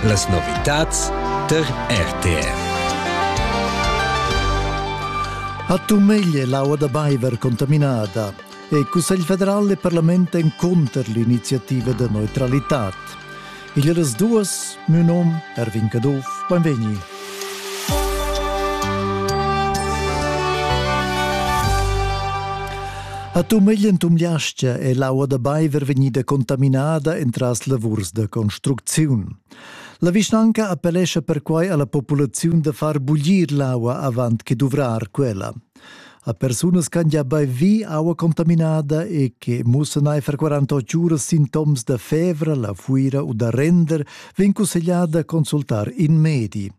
Las novitads tar RTR. A Tumeglie l'aua da Baiver contaminada e il Cussegl federal e Parlament en conter l'iniziativa de neutralità. Il das duas, mio nom Erwin Caduff, benvegni. A tu meglien tumliastia è l'aua da baiver vegnida contaminada entras lavurs da construcziun. La vischnanca appellescha perquai alla populaziun da far buglir l'aua avant che duvrar quella. A persunas ch'han gia baivi aua contaminada e che mussan aifer 48 uras sintoms da fevra, la fuira u da render, vegn cussegliada a consultar in medi.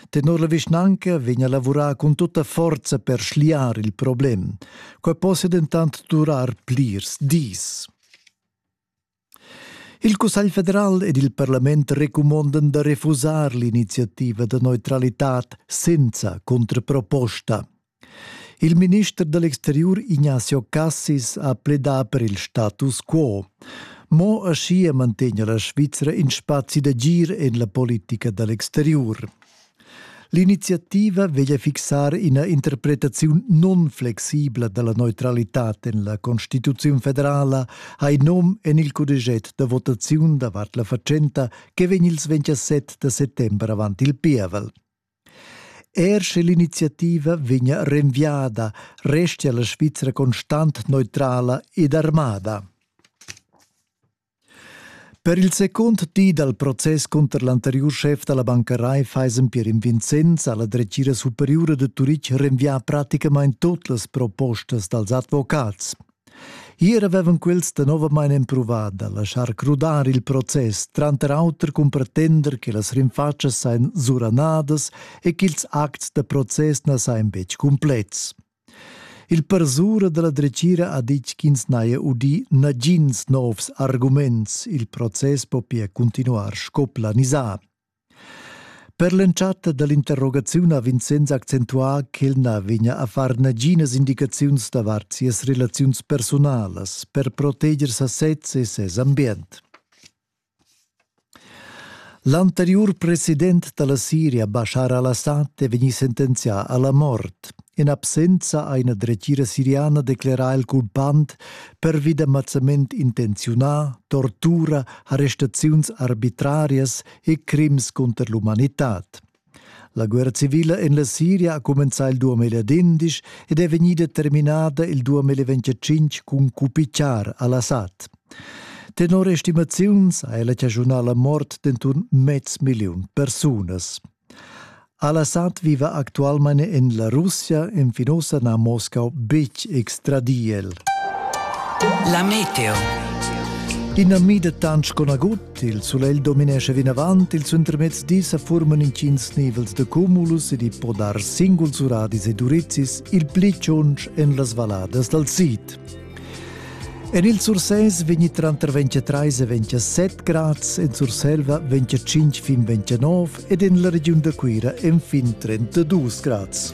Tenor la vischnanca vegn a lavurar cun tutta forza per schliar il problem. Quai possia dentant durar plirs dis. Il Cussegl federal ed il parlament recumondan da refusar l'iniziativa da neutralitad senza contraproposta. Il minister dell'exterior Ignacio Cassis ha pledà per il status quo. Mo aschia mantegna la Svizzera in spazi d'agir en la politica dell'exterior. L'iniziativa veglia fixar ina interpretaziun nunflexibla dalla neutralitad en la Constituziun federala ha in nom en il cudeget da votaziun davart la fatschenta che vegn il 27 da settember avant il pievel. Er sche l'iniziativa vegna renviada, restia la Svizra constant neutrala ed armada. Per il secund di dal process cunter l'anteriur schef da la banca Raiffeisen Pierin Vincenz ha la dretgira superiura da Turitg renvià praticamain tut las propostas dals advocats. Hier avevan quels danovamain empruvà da laschar crudar il process, tranter auter cun pretender che las rinfatschas sajan suranadas e ch'ils acts da process na sajan betg cumplets. Il parsura dalla dretgira ha detg ch'ins n'haja udì nagins novs arguments. Il process po pia cuntinuar sco planisà. Per l'entschatta dall'interrogaziun ha Vincenz accentuà ch'el na vegnia a far naginas indicaziuns davart sias relaziuns personalas per proteger sa sez e ses ambient. L'anteriur president da la Siria Bashar al-Assad è vegnì sentenzià a la mort. In absenza ha ina dretgira siriana declerà il culpant pervi d'ammazzament intenziunà, tortura, arrestaziuns arbitrarias e crims cunter l'umanitad. La guerra civila en la Siria ha cumenzà il 2011 ed è vegnida terminada il 2025 cun cupichar al-Assad. Tenor estimaziuns ha ella chaschunà la mort d'enturn mez milliun persunas. Al-Assad viva actualmain en la Russia, enfin ossa n'ha Moscau betg extradì el. La meteo. In ami de tanc conagut Il sulegl dominescha vinavant, il suentermezdi sa forman intgins nivels da cumulus ed i po dar singuls uradis e durizis il pli tschunsch en las valladas dal sid. En il Sursès vegni tranter 23 e 27 grads, en Surselva 25 fin 29 ed en la regiun da Cuira enfin 32 grads.